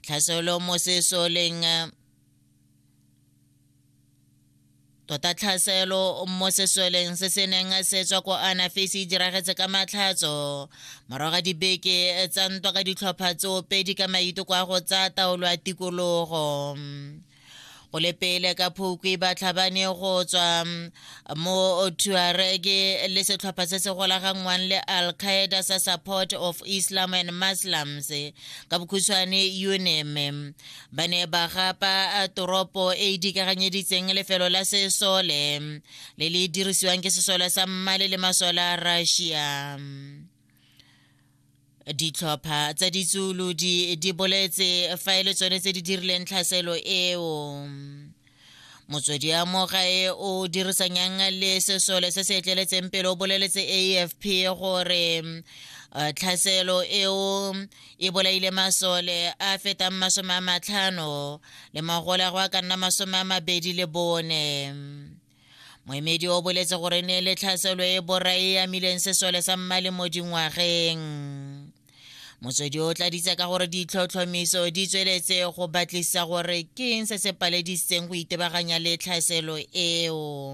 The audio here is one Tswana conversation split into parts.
tlhaselo mo sesoleng tota tlhaselo mo sesoleng se se neng se tswa ko anafese e diragetse ka matlhatso morago ga dibeke tsa ntwa ka ditlhopha tsoopedi ka maiteko a go tsaya taolo ya tikologo go le pele ka phukwi ba tlhabane go tswa mm, mo tuarege le setlhopha se se golaganngwang le al-qaeda sa support of islam and muslims ka bokhutshwane unm ba ne ba gapa toropo e e dikaganyeditseng lefelo la sesole mm, le le dirisiwang ke sesole sa mmale le masole a russia mm. ditlhopha tsa ditsulu di di boletse fa e le tsone tse di dirileng tlhaselo eo motswedi ya moga e o dirisang yang le sesole se se etleletseng pele o boleletse afp gore eh, tlhaselo eo e bolaile masole a fetang masome a matlhano le magole a go a ka nna masome a mabedi le bone moemedi o boletse gore ne le tlhaselo e borai e amileng sesole sa mmale mo dingwageng motswedi o tladitse ka gore ditlhotlhomiso di tsweletse go batlisa gore ke eng se se paledisitseng go itebaganya le tlhaselo eo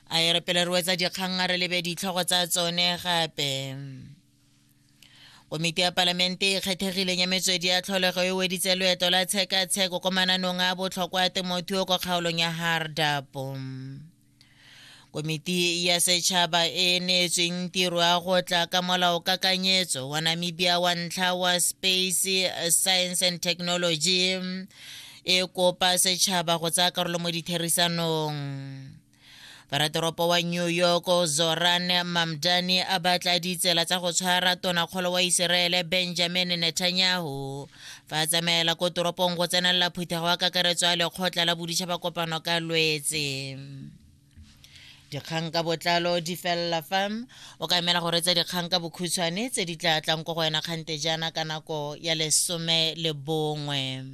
a e re pele re wetsa dikgang a re lebe ditlhogo tsa tsone gape komiti ya palamente e kgethegileng ya metswedi ya tlholego e weditse loeto la tshekatsheko ko mananong a botlhokwa a temothuo kwa kgaolong ya hardapo komiti ya setšhaba e e neetsweng tiro ya go tla ka molao kakanyetso wa namibia wa ntlha wa space science and technology e kopa setšhaba go tsaya karolo mo ditherisanong Paratoropo wa New York Zoran Mamdani a batla ditsela tsa go tshwara tonakgolo wa Iseraele Benjamin Netanyahu fa a tsamaela ko toropong go tsenelela phuthego ya kakaretso ya lekgotla la boditšhaba kopano ka lwetse dikgang ka botlalo di felela fa o ka emela go retsa dikgang ka bokhutshwane tse di tla tlang ko go wena kgante jaana ka nako ya lesome le bongwe